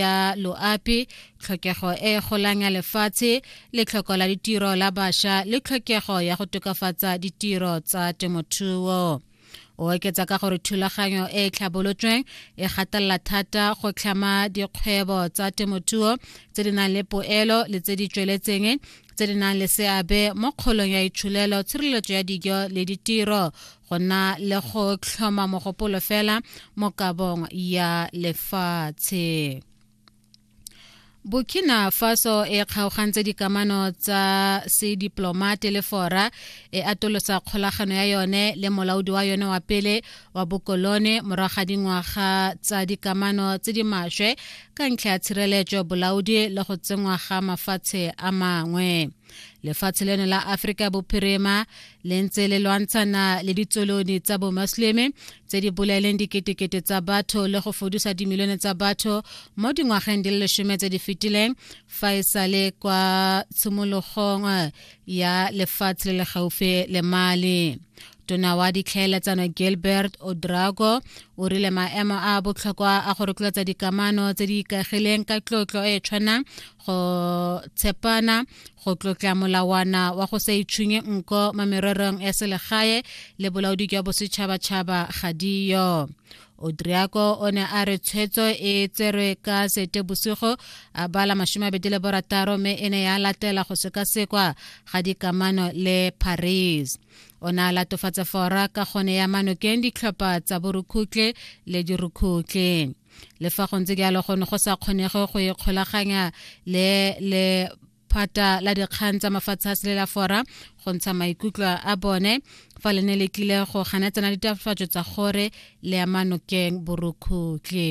ya loapi tlhokego e golang ya lefatshe letlhoko la ditiro la basha le tlhokego ya go tokafatsa ditiro tsa temothuo o oketsa ka gore thulaganyo e e tlhabolotsweng e gatelela thata go tlhama dikgwebo tsa temothuo tse di nang le poelo le tse di tsweletseng tse di nang le seabe mo kgolong ya itsholelo tshireletso ya dijo le ditiro go na le go tlhoma mogopolo fela mo kabong ya lefatshe burkina faso e kgaogantse dikamano tsa sediplomate le fora e atolosa kgolagano ya yone le molaodi wa yone wa pele wa bokolone morago ga dingwaga tsa dikamano tse di maswe ka ntlha ya tshireletso bolaodi le go tsenngwa ga mafatshe a mangwe lefatshe leno la aforika bophirima le ntse le lwantshana le ditsolone tsa bomasleme tse di bolaeleng diketekete tsa batho le go fodusa dimilione tsa batho mo dingwageng di le lesome tse di fetileng fa e sale kwa tshimologong ya lefatshe le le gaufi le mali tona wa ditlhaeletsano gilbert odrago o rile maemo a botlhokwa a go rotloetsa dikamano tse di ikagileng ka tlotlo e e tshwanang go tshepana go tlotla molawana wa go sa itshunye nko mo mererong ya selegae le bolaodi jwa bosetšhabatšhaba ga diyo odriako o ne a re tshwetso e tserwe ka sete bosigo a bala masome a bedi le borataro mme e ne ya latela go sekasekwa ga dikamano le paris o ne a latofatsa fora ka gone ya manokeng ditlhopha tsa borukhutle le dirukhutle le fa go ntse jalo go ne go sa kgonege go ikgolaganya le le phata la dikgang tsa mafatshe a selela fora go ntsha maikutlo a bone fa le ne le tlile go ganetsana ditafatso tsa gore le ya manokeng borukhutle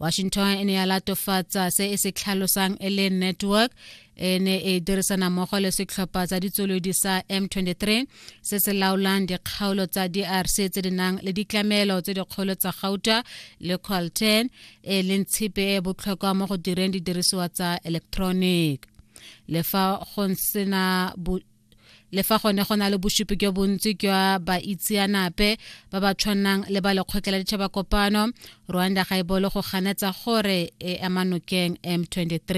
washington e ne ya latofatsa se e se tlhalosang e le network e ne e dirisana mmogo le setlhopha tsa ditswelodi sa m23 se se laolang dikgaolo tsa drc tse di nang le ditlamelo tse dikgolo tsa gauta le colten e leng tshipe e botlhokwa mo go direng didirisiwa tsa electronic le fa go sena le fa gone go na le bosupi jo bontsi jwa baitseanape ba ba tshwanang le ba lekgotla la ditšhaba kopano rwanda ga e bolo go ganetsa gore e ema nokeng m23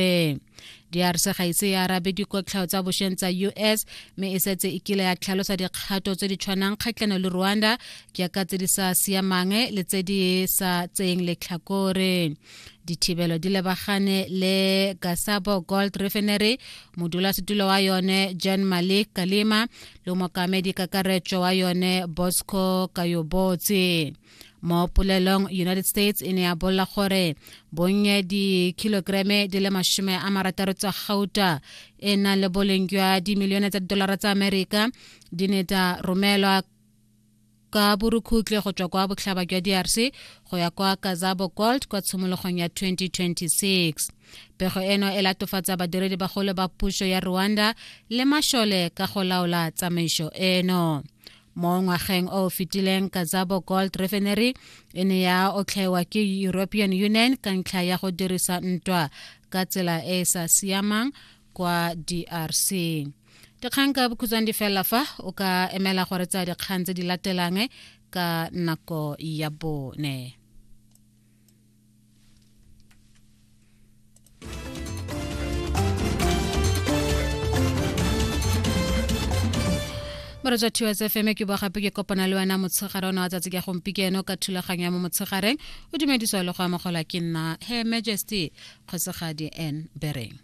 drc ga ise ya arabe dikotlhao tsa bošweng tsa us mme e setse e kile ya tlhalosa dikgato tse di tshwanang kgatlhano le rwanda jaaka tse di sa siamang le tse di sa tseyeng letlhakore dithibelo di lebagane le gasabo gold refinery modulasetulo wa yone jan malik kalima le mokamedi kakaretso wa yone bosco kayobotse mo polelong united states e ne ya bolela gore bonnye dikilograme di le masome a marataro tsa gauta e nang le boleng jwa dimilione tsa didolara tsa amerika di ne tsa romelwa ka borukhutlwe go tswa kwa botlhaba jwa drc go ya kwa kazabo gold kwa tshimologong ya 2026 pego eno e latofatsa badiredi bagolo ba puso ya rwanda le mashole ka go laola tsamaiso eno mo ngwageng o o fetileng kazabo gold refinery e ne ya otlhaiwa ke european union ka ntlha ya go dirisa ntwa ka tsela e e sa siamang kwa drc dikgang ka bokhutshwane di fela fa o ka emela gore tsa dikgang tse di latelang ka nako ya bone moretsa two s fm ke bua gape ke kopana le wena motshegare ona wa tsatsi ka gompikeno ka thulaganyo ya mo motshegareng o dumediswa le go amogelwa ke nna he majesty kgosigadi n bereng